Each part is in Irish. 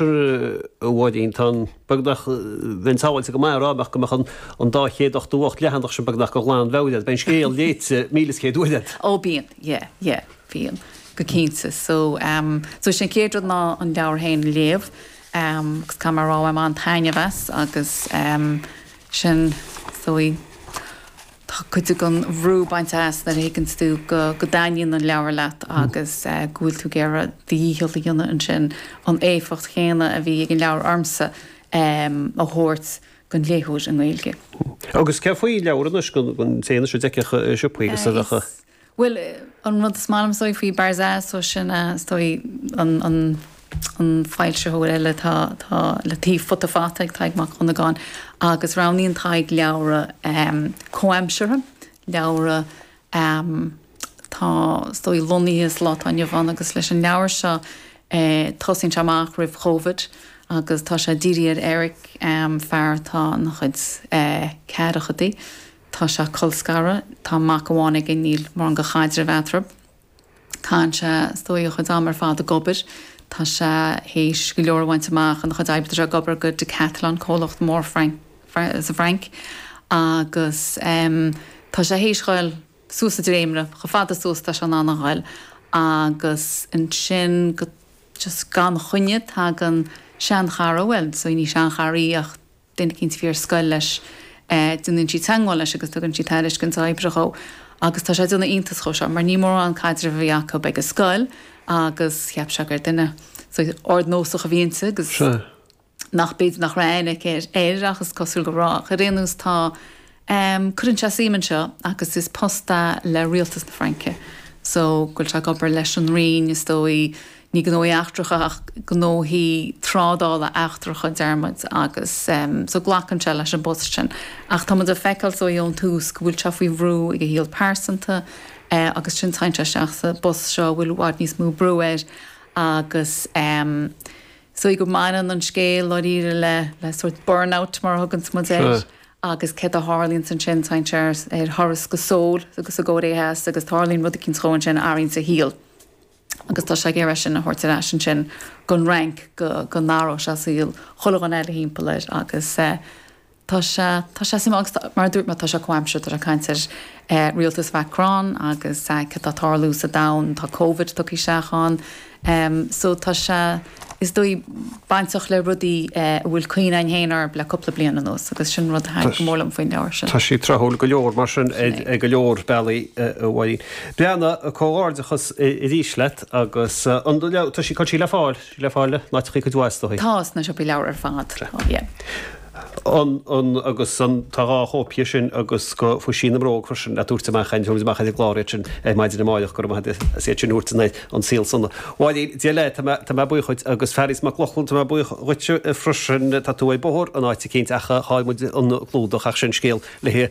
Mháirín, Tá an, beag nach bheinn sábháilte go maith a rá mbeadh go mbeadh an, an dá chéad ochtó hocht leathanach sin beag nach dhe ghlanmheabhair agat, beidh an scéal léite míle is céad uair a'd. Ó bíonn, yeah, yeah, bíonn, go cinnte. So, um, so sin an chéad rud ná an leabhar féin a léamh, um, agus cá mar a rá, bhain mé an-taitneamh as, agus, um, sin, so í. tá cuid den bhrú bainte as nuair a thuigeann tú go dtaitníonn an leabhar leat agus go bhfuil tú ag iarraidh do dhícheall a dhéanamh ansin an éifeacht chéanna a bhí ag an leabhar ormsa a thabhairt don léitheoir i nGaeilge. Agus céard faoi leabhair anois, an dtéann siad ag siopaí agus a. Bhuel, an rud is maith liom, is dóigh, faoi Barzaz, so sin, is dóigh, an, an foilsitheoir eile atá, atá le taobh Futa Fata ag Tadhg Mac Dhonnagáin agus roghnaíonn Tadhg leabhra comhaimseartha, leabhra, atá, is dóigh, lonnaithe sa lá atá inniu ann agus leis an leabhar seo, tosaíonn sé amach roimh Chovid agus tá sé ag díriú ar Eric, fear atá ina chuid ceathrachaidí. Tá sé colscartha. Tá mac amháin aige, níl mórán go chaidreamh eatarthu. Caitheann sé is dóigh a chuid ama ar fad ag obair. Tá sé théis go leor a bhaint amach ina chuid oibre, tá sé ag obair go Decathlon, comhlacht mór sa Fhrainc, agus tá sé théis ghoil suas sa dréimire, chomh fada suas tá sé in ann a ghoil, agus ansin go just gan choinne tagann seanchara, bhuel, so ní seanchara í ach, Duine eicínt a bhí ar scoil leis, déanann sí teagmháil leis agus tugann sí tairiscint oibre dhó agus tá sé ag déanamh iontas dhe seo mar ní mórán caidreamh a bhí acu ag an scoil agus cheap sé gur duine ardnósach a bhí inti agus nach b'fhéidir nach raibh aithne aici air ach is cosúil go raibh ach ar aon nós tá Em, cuireann sé suim ann seo agus is post é le rialtas na Fraince so go bhfuil sé ag obair leis an roinn, is dóigh, ní gnóthaí eachtracha ach gnóthaí trádála eachtracha, déarfaidh muid, agus em so glacann sé leis an bpost sin ach tá muid ag feiceáil so ón tús go bhfuil sé faoi bhrú ag a shaol pearsanta eh agus ansin téann sé isteach sa bpost seo a bhfuil i bhfad níos mó brú air agus em so go mbaineann an scéal dháiríre le le sórt burnout mar a thuganns muid air. agus céard a tharlaíonns ansin, téann sé ar thuras go Seoul agus sa gCóiré Theas agus tarlaíonn rud eicínt dhó ansin a athraíonns a shaol agus tá sé ag iarraidh é sin a thabhairt ar ais ansin gon Fhrainc go n-athródh sé saol chuile dhuine eile thimpeall air agus tá sé, tá sé suimiúil agus mar a dúirt mé, tá sé comhaimseartha, tá sé ag caint ar rialtas Mhacron agus céard tá ag tarlú sa domhan, tá Covid tugtha isteach ann. Ehm, so tá sé, is dóigh, bainteach le rudaí a bhfuil cineál suim fhéin orm le cúpla bliain anuas agus sin rud a thaitin go mór liom faoin leabhar sin. Tá sé tráthúil go leor, mar sin, ar go leor bealaí, a Mháirín. Breathnaigh comhghairdeachas arís leat agus an leabhar, tá sí, tá sí le fáil? Tá sí le fáil i n-áiteachaí cuid mhaith, is dóigh. Tá, sna siopaí leabhar ar fad. Bhreac. Tá, yeah. an, an, agus an, tá dhá chóip dhi sin agus go, Faoi Shíneadh na mBróg freisin, le tabhairt amach, tabharfar amach ar an gclár iad sin ar maidin amáireach, go raibh maith agat as iad sin a thabhairt dúinn ar An Saol Ó Dheas. Mháirín, Dia le, tá mé, tá mé buíoch dhuit, agus Fearghas Mac Lochlainn, tá mé buíoch dhuitse freisin, tá tú ar bóthar in áit eicínt ach chaill muid an clúdach ach sin scéal lae eile.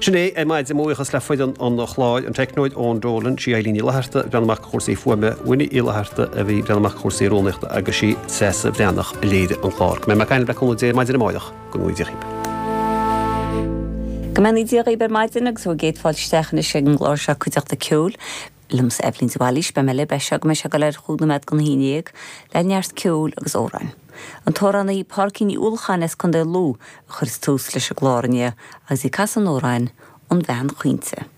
Sin é ar maidin, mo bhuíochas le foireann an chláir, an teicneoir Eoin Dolan, sí Eilín Ní Fhlatharta ag breathnú amach do chúrsaí fuaime, Winnie Uí Fhlatharta, a bhí ag breathnú amach do chúrsaí rúnaíochta, agus sí Treasa Bhreathnach a léirigh an clár. Go mbeidh mé ag caint libh le cúnamh Dé maidin amáireach, go mbeannaí Dia dhaoibh! Go mbeannaí Dia dhaoibh ar maidin agus bhur gcéad fáilte isteach anois ag an gclár seo Cuideachta Ceoil. Liomsa Eibhlín de Bhailís, beidh mé libh as seo go mbeidh sé ag dul ar chúig nóiméad don a haon déag, le neart ceoil agus amhráin. An t-amhránaí Pádraigín Ní Uallacháin as Contae Lú a chuirfidh tús leis an gclár inniu agus í ag casadh an amhráin 'An Bhean Chaointe'.